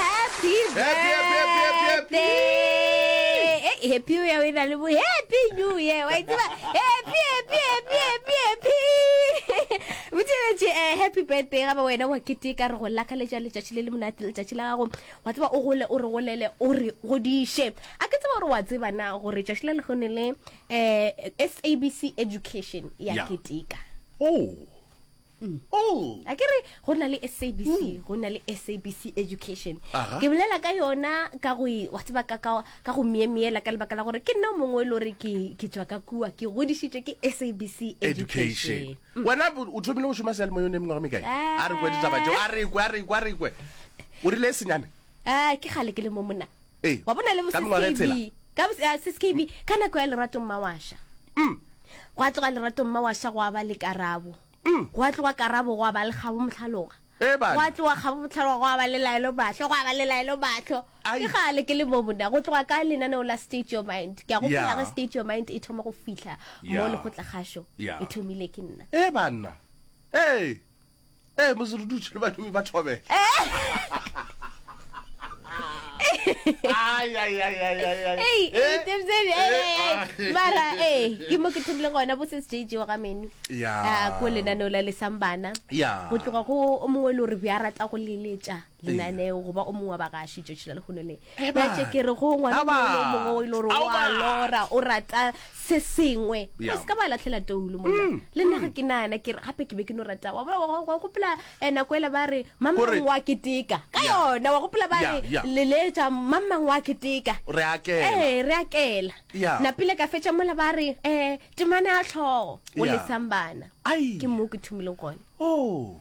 Happy Happy, happy, happy, happy, happy. birthday. Eh, happy o ya o e na le bo happy new year wa itseba happy happy happy happy happy botšeletše eh, happy birthday ga ba wena wa keteka re go lakaletša letšatši le le monate letšatši la gago wa tseba o gole o re golele o re godiše a ke tseba gore wa tseba na gore tšatši la legone le um sabc education ya Ya. keteka Oh. Mm. Mm. a ke re go na le sabc mm. go na le sabc education ke bolela ka yona ka go e, wa tseba ka go miemeela ka lebaka la gore ke nna mongwe e le gore ke tswa ka kua ke godisitswe ke sabc education mm. wena o thomile go šoma seale mo yone mengwago mekae eh. a re kwe ditaba jo a rekwe a rekwe a rekwe o rile e senyane a eh, ke gale ke le mo mona Ee, Wa bona le bo ka mengwaga e sis KB. tshela. Ka bo ya sis KB ka nako ya Lerato Mmawasha. Gwa tloga Lerato Mmawasha gwa ba le Karabo. Gwa tloga Karabo gwa ba le Kgabo Mohlaloga. Ee, bana. Gwa tloga Kgabo Mohlaloga gwa ba le Laelo Mahlo, gwa ba le Laelo Mahlo. Ai. Ke kgale ke le mo monna. Go tloga ka lenaneo la State Your Mind. Ke a gopola Yeah. ge State Your Mind e thoma go fihla mo Yeah. lekgotlakgašo. Yeah. E thomile ke nna. Ee, banna. Ee, ee mo se re dutše le badimo ba thobela mara ee ke mo ke thomile gona bo se sjj wa ga menu ya Ah, ko lenaneo la lesang bana ya go tloga go o mongwe le gore be a rata go leletša lenaneo goba o mongwe wa bagaši tšatši la lehono le natše ke re go ngwana mongwe o ile gore wa lora o rata se sengwe o se ka ba latlhela toulu monna mm. le nna ga mm. ke nana ke gape ke be ke no rata wa gopela eh, nako ele ba re mamang wa keteka ka yona wa gopela ba re leletša mamang wa keteka re akela eh, napile ka fetša mola ba re um temane a tlhogo o lesang bana ke moo ke thomileng gone oh.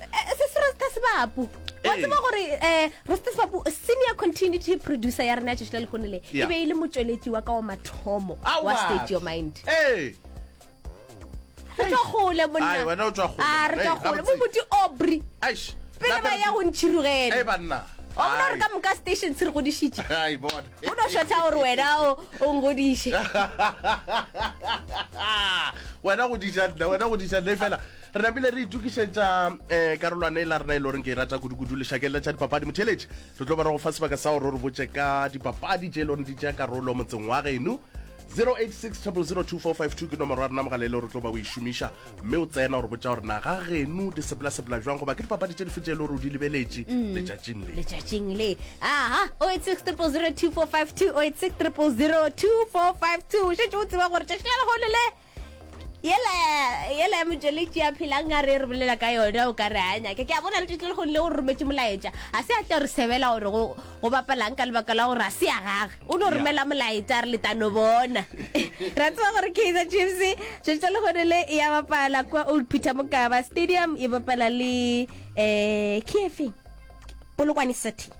eh, se se rasta sebapu wa tseba gore um rasta sebapu senior continuity producer ya rena tšešo le lekgone le e be e le motšweletši wa ka wa mathomo wa state your mind re tswa gole monna re tswa gole mo moti obry pele ba ya go ntšhirogele ona re ka moka station se re godišitše o no shotha gore wena o ngodiše wena go dija nna wena go dija nna fela re napile re itokišetša um eh, karolwane e la rena e le goreng ke e rata kudu-kudu lešakeng la tša dipapadi motheletši re tlo ba re go fa sebaka sa gore o re botse ka dipapadi tše e le goreng di tša karolo motseng wa geno 08600242 ke nomoro ya rena mogala e le gore o tlo ba o e šomiša mme o tsena gore botša gore na ga geno di sepela-sepela jwang goba ke dipapadi tše dife tše e le gore o di lebeletše letšatšing le letšatšing le aha o e six triple zero two four five two o e six triple zero two four five two o šetse o tseba gore tšatši la lehono le yela yela ya motšweletši ya phelang a re re bolela ka yona o ka re a nyake ke a bona le tšetlele go nle o re rometse molaetša ga se a tla re sebela gore go bapalang ka lebaka la gore ga se ya gage o no romela molaetša re letano bona ra tseba gore kaizer chiefs tšetlele le gone le ya bapala kwa old peter mokaba stadium e bapala le um eh, kefeng polokwane city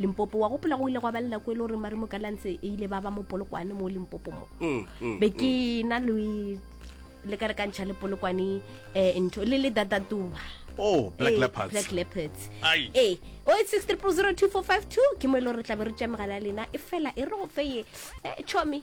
limpopo wa gopola go ile gwa ba le nako e le gore mare mokalantse e ile ba ba mo polokwane mo limpopo mo mm, mm, be ke mm. na le le ka re ka ntšha le polokwane um ntho le le datatuba oh black eh, leopards black leopards eh o it's 6302452 ke mo e le gore re tla be re tša megala ya lena e fela e re go feye eh, chomi